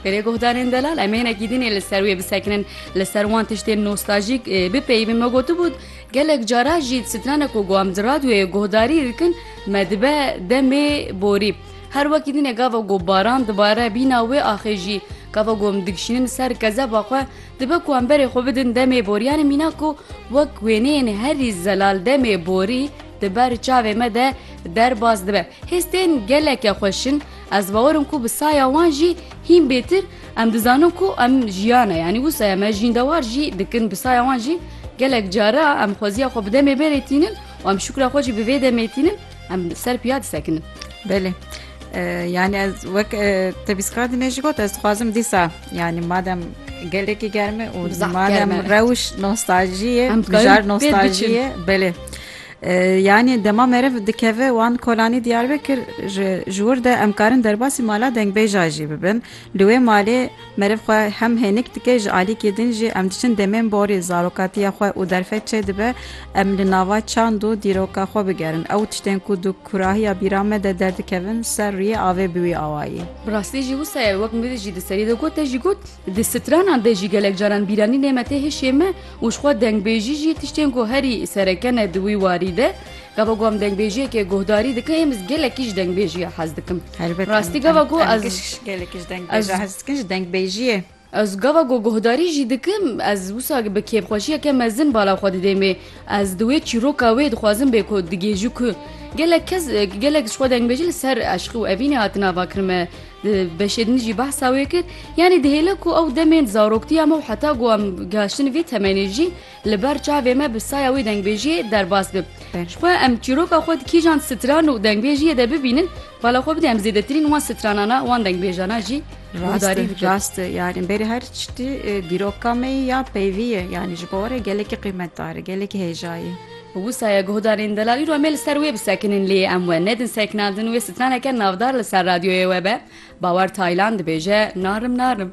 Pêrê guhdarên delal em hinekî din ê li ser wê bisekinin li ser wan tiştên nostajîk bipeyivin me gotibû gelek cara jî strana ku guam di radyoyê guhdarî dikin me dibe demê borî. Her wekî dinê gava ku baran dibare bîna wê axê jî gava ku em dikişînin ser kezeba xwe dibe ku em berê xwe bidin demê boriyanê mîna ku wek wêneyên herî zelal demê borî di ber çavê me de derbas dibe. Hêstên geleke xweşin Ez bawer im ku bi saya wan jî hîn bêtir em dizanin ku em jiyane yanî wisa ye me jîndewar jî dikin bi saya wan jî gelek cara em xweziya xwe bi demê berê tînin û em şukra xwe jî bi vê demê tînin em ser piya disekinin. Belê. Yani ez wek tebîskar dine ji got ez dixwazim dîsa yani madem gelekî germe û madem rewş nostaljiye em nostaljiye belê. Yanî dema meriv dikeve wan kolanî Diyarbekir ji ji wir de em karin derbasî mala dengbêja jî bibin. Li wê malê meriv xwe hem hênik dike ji alîkê din jî em diçin demên borî zarokatiya xwe û derfet çêdibe em li nava çand û dîroka xwe bigerin ew tiştên ku di kurahiya bîra me de derdikevin ser rûyê avê bi wî awayî. Bi rastî jî wisa ye wek mirî jî di serî de got te jî got. Di stranan de jî gelek caran bîranî nêmetê hişê me û ji xwe dengbêjî jî tiştên ku herî sereke ne di wî warî de. Gava ku em dengbêjiyekê guhdarî dikin êmiz gelekî ji dengbêjiya hez dikim. Helbet rastî gava ku ez gelekî ji dengbêjiya hez dikin ji dengbêjiyê. Ez gava ku guhdarî jî dikim ez wisa bi kêfxweşiyeke mezin bala xwe didê mê. Ez di wê çîroka wê dixwazim bê ku digêjî ku gelek kes gelek ji xwe dengbêjî li ser eşqî û evînê hatin avakirin me. Beşê din jî behsa wê kir, yanî dihêle ku ew demên zaroktiya me û heta ku em gihiştin vê temenê jî li ber çavê me bi saya wê dengbêjiyê derbas bib. Ji xwe em çîroka xwe di kîjan stran û dengbêjiyê de bibînin, bala xwe bidê em zêdetirîn wan stranana wan dengbêjana jî guhdarî bikin. Rast e yanî berê her tiştî dîroka me ya peyvî ye yanî ji bo were gelekî qîmetdar e, gelekî hêja ye. Wisa ye guhdarên delalî Romê li ser wê bisekinin lê em we nedin sekinandin wê sitraneke navdar li ser radyoyê we be, Bawer Taylan dibêje narim narim.